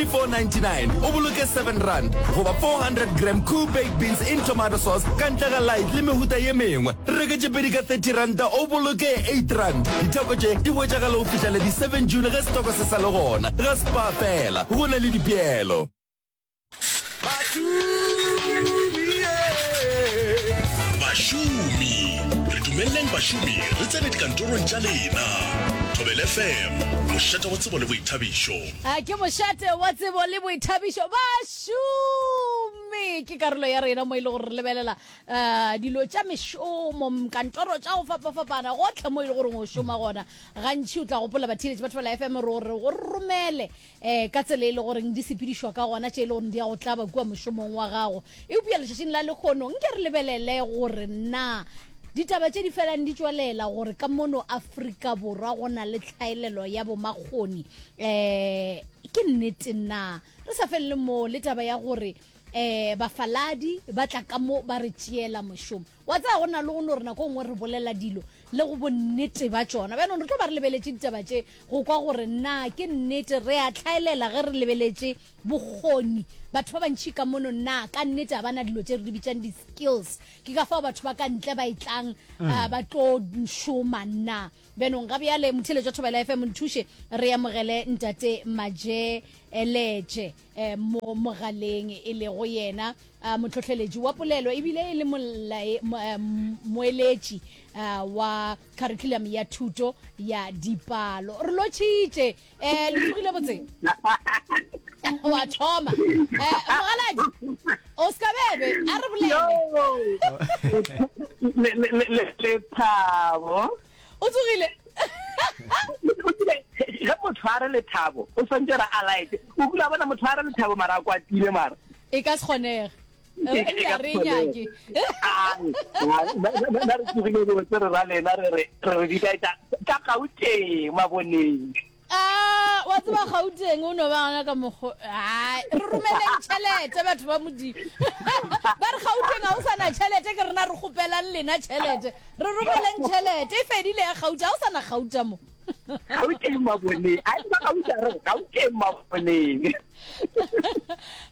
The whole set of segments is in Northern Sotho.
499 o boloke 7 rand goba 400 gram cool baked beans in tomato sauce ka ntle ga light le mehuta ye mengwe reke tše pedi ka 30 ranta o boloke 8 rand ditheko tše di hwetšagale go fitlhela di-7 june ge setoko se sa le gona ga spa fela go na le dipeelo bašomi re dumeleleng bašomi re tsene dikantorong tša lena thobel fm mošate wa tsebo le boithabišo A ke mošate wa tsebo le boithabišo. Bašomi ke karolo ya rena mo e le gore re lebelela uh, dilo tša mešomo, kantoro tša go fapafapana, gotlhe mo e le gore o šoma gona. Gantši o tla gopola batheeletši ba Thobela FM re gore go romele eh, ka tsela e le goreng di sepedišwa ka gona, tše e le gore di ya go tlaba kua mošomong wa gago. Eupša letšatšing la lehono nke re lebelele gore na ditaba tše di felang di tšwelela gore ka mono Afrika Borwa go na le tlhaelelo ya bomakgoni um ke nnete na. Re sa felele moo le taba ya gore um bafaladi ba tla ka mo ba re tšeela mošomo. Wa tsaya go na le go no re nako e nngwe re bolela dilo le go bonnete ba tšona. Bjanong re tlo ba re lebeletše ditaba tše go kwa gore na ke nnete re a tlhaelela ge re lebeletše Bokgoni. Batho ba bantši ka mono na ka nnete ga ba na dilo tše re di bitšang di-skills? Ke ka fao batho ba ka ntle ba e tlang ah, ba tlo šoma na? Bjanong ga bjale, motheeletši wa Thobela FM, nthuše re amogele Ntate Majeletše eh, mo mogaleng, e lego yena ah, motlhohleletši wa polelo ebile e le molae- mo- eh, m- moeletši ah, wa kharikhulamo ya thuto ya dipalo. Re lotšhitše um le tsogile botse wa thoma Eh, mogaladi o seka bebe a re bolele Le- le- le- le- lethabo o tsogile ge motho a re lethabo o swantse re a laete o kula bona motho a re lethabo mara a kwatile mara e ka se kgonege ba re tsogile dilo tse re ra lena re re re re bikaetsa ka gauteng maboneng ah, wa tseba gauteng o no ba gona ka mokgo ai re romeleng tšhelete batho ba modimo ba re gauteng ga o sana tšhelete ke rena re kgopelang lena tšhelete re romeleng tšhelete e fedile ya gauta ga o sana gauta mo gauteng maboneng a eba gautare gauteng maboneng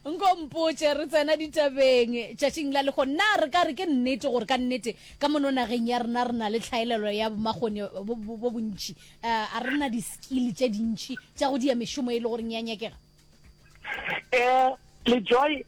nko mpotše re tsena ditabeng tšatšing la lego nna re ka re ke nnete gore ka nnete ka mono nageng ya rena re na le tlhaelelo ya bomakgone bo bontšhi eh, a re na di-skill tše dintšhi tša go dia mešomo e le goreng ya nyakega um le joy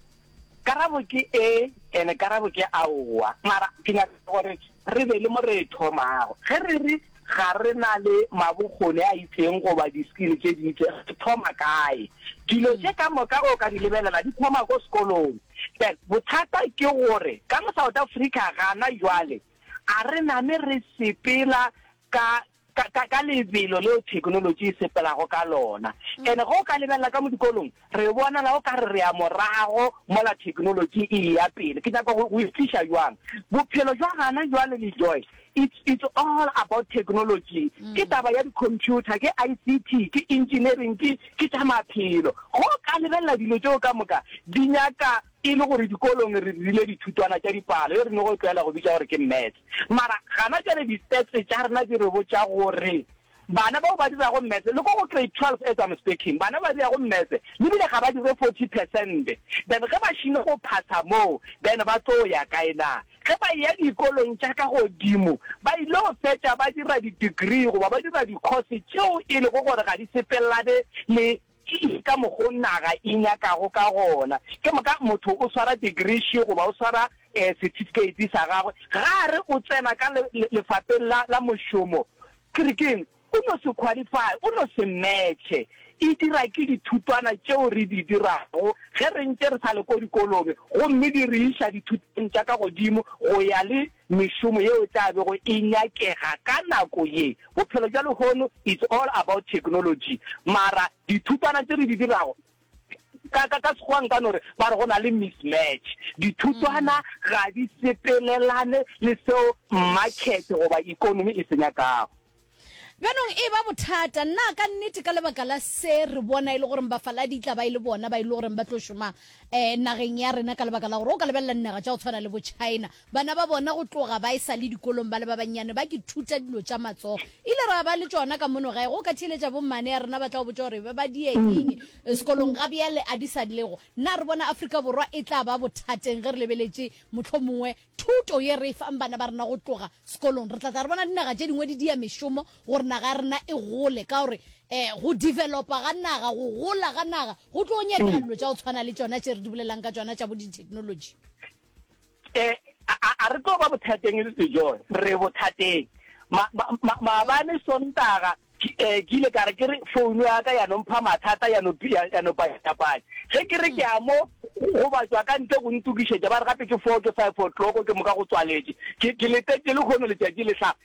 karabo ke e ene karabo ke aowa mara ke nyaka gore re be le mo re e thomago ge re re ga re na le mabokgone a itseng goba di-skill tse di itse re thoma kae dilo tse ka moka o ka di lebelela di thoma ko sekolong then bothata ke gore ka mo south africa gana jwale a re name re sepela ka ka, ka, ka lebelo leo theknolotši e sepelago ka lona. And ge o ka lebelela ka mo dikolong, re bonala o ka re re ya morago mola theknolotši e eya pele. Ke nyaka go, go e tliša bjang? Bophelo bja gana bjale, Lejoy, it's, it's all about technology. Ke taba ya di-computer, ke ICT, ke engineering, ke, ke tša maphelo. Ge o ka lebelela dilo tšeo ka moka, di nyaka e le gore dikolong re rile dithutwana tša dipalo, e re no go tlwaela go bitša gore ke maths. Mara gana jwale di-stats tša rena di re botša gore bana bao ba dirago Maths, le ko go Grade 12 as I'm speaking, bana ba ba dirago Maths le bile ga ba dire 40 percent. Then ge ba šile go phasa moo, then ba tlo ya kae na? Ge ba eya dikolong tša ka godimo, ba ile go fetša ba dira di-degree goba ba dira di-course tšeo e lego gore ga di sepelelane le Ke eng ka mokgwa o naga e nyakago ka gona? Ke moka motho o swara degreeshi goba o swara setifikheiti sa gagwe, ga a re o tsena ka lefapeng la, la mošomo, ke re ke'ng? O no se qualify, o no se match-e. E dira ke dithutwana tšeo re di dirago ge re ntše re sa le ko dikolong, gomme di re iša dithutong tša ka godimo go ya le mešomo yeo e tla bego e nyakega ka nako ye. Bophelo bja lehono it's all about technology, mara dithutwana tše re di dirago, ka, ka, ka Sekgowa nka no re, ba re go na le mismatch. Dithutwana ga di sepelelane le seo makhethe goba ekonomi e se nyakago. Bjanong e ba bothata na ka nnete ka lebaka la se re bona e le goreng bafaladi e tla ba e le bona ba e le goreng ba tlo šoma um nageng ya rena ka lebaka la gore o ka lebelela dinaga tša go tshwana le bochina bana ba bona go tloga ba e sa le dikolong ba le ba bannyane ba ke thuta dilo tša matsogo e ile ra ba le tšona ka mono gae go ka theeletša bommane ya rena ba tla go botša gore be ba diyenyeng mm. sekolong ga bjale a di sa lego na re bona afrika borwa e tla ba bothateng ge re lebeletše motlho mongwe Thuto ye re e fang bana ba rena go tloga sekolong, re tla tla re bona dinaga tše dingwe di dia mešomo gore naga ya rena e gole, ka gore um go developa ga naga, go gola ga naga, go tlo nyakega dilo tša go tshwana le tšona tše re di bolelang ka tšona tša bo di-technology. E, a, a re tlo ba bothateng e le se, John? Re bothateng. Ma, ma, ma, maabane Sontaga Ke, eh, ke ile ka re, ke re, founu ya ka ya no mpha mathata, ya no, ya, ya no panyapanya. Ge ke re ke ya mo go batšwa ka ntle go ntokišetša, ba re gape ke four, ke five o'clock, ke moka go tswaletše. Ke, ke letetše lehono letšatši le hlaga.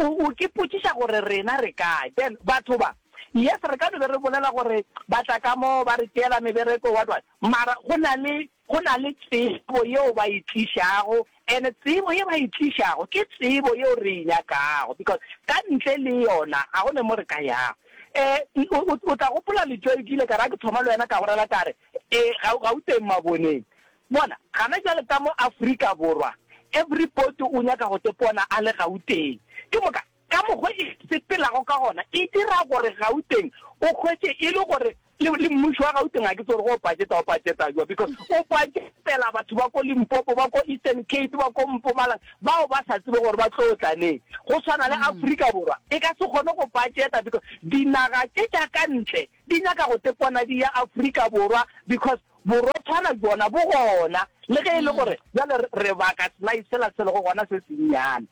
O, o ke potšiša gore rena re kae? Ben, Batho ba. Yes, re ka no be re bolela gore ba tla ka mo, ba re tšeela mebereko, what, what. Mara go na le Go na le tsebo yeo ba e tlišago, and tsebo ye ba e tlišago ke tsebo yeo re e nyakago, because ka ntle le yona ga go ne mo re ka yago. Um, o, o, o tla gopola Letšoe, ke ile ka re ga ke thoma le wena ka go rela ka re, E, ga, Gauteng maboneng. Bona, gana bjale ka mo Afrika Borwa, everybody o nyaka go tepona a le Gauteng. Ke moka, Ka mokgwa e sepelago ka gona e dira gore Gauteng o hwetše e le gore le, le mmušo wa Gauteng ga ke tsebe gore o pajeta, o pajeta jwa because o pajetela batho ba ko Limpopo, ba ko Eastern Cape, ba ko Mpumalang bao ba sa tsebe gore ba tlo tla neng. Go swana le Afrika Borwa e ka se kgone go pajeta because dinaga tše tša ka ntle Di nyaka go tepona di ya Afrika Borwa because borotshwana bjona bo gona le ge e le gore bjale re baka sly sela se lego gona se sennyane.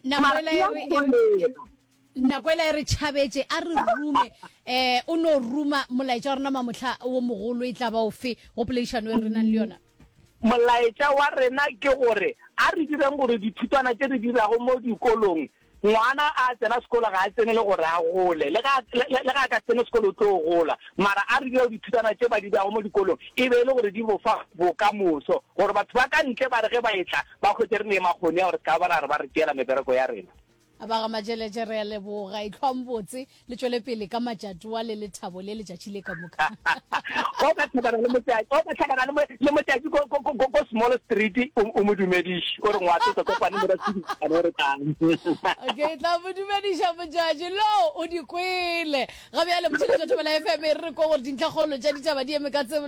Mara e ya kgonega. Nakwela e re tšhabetše, a re rume. Um o no ruma molaetša wa rena mamohla wo mogolo e tla ba ofe go poledišano e re nang le yona? Molaetša wa rena ke gore a re direng gore dithutwana tše re dirago mo dikolong Ngwana a tsena sekolo ga a tsene le gore a gole. Le ga, le, le ga a ka tsene sekolo o tlo gola. Mara a re dira dithutana tše ba di beago mo dikolong e be e le gore di bo fa bokamoso, gore batho ba ka ntle ba re ge ba etla ba hwetše re ne makgoni a gore se ka ba ra re ba re tšeela mebereko ya rena. Ba ga Majeleje re a leboga. Ehlwang botse. Le tšwele pele ka matšatoa le lethabo le letšatši le ka moka. O ka tlhakana le motšatši, o ka tlhakana le mo, le motšatši ko, ko, ko, ko Small Street, o, o mo dumediše, o re ngwa tlo kopane mo ra tšhidisana o re tlang. Okay, tla mo dumediša motšatši. Lo, o di kwele. Ga bjale, Motšheletšo Thobela FM e re re ko gore dintlhakgolo tša ditaba di eme ka tse.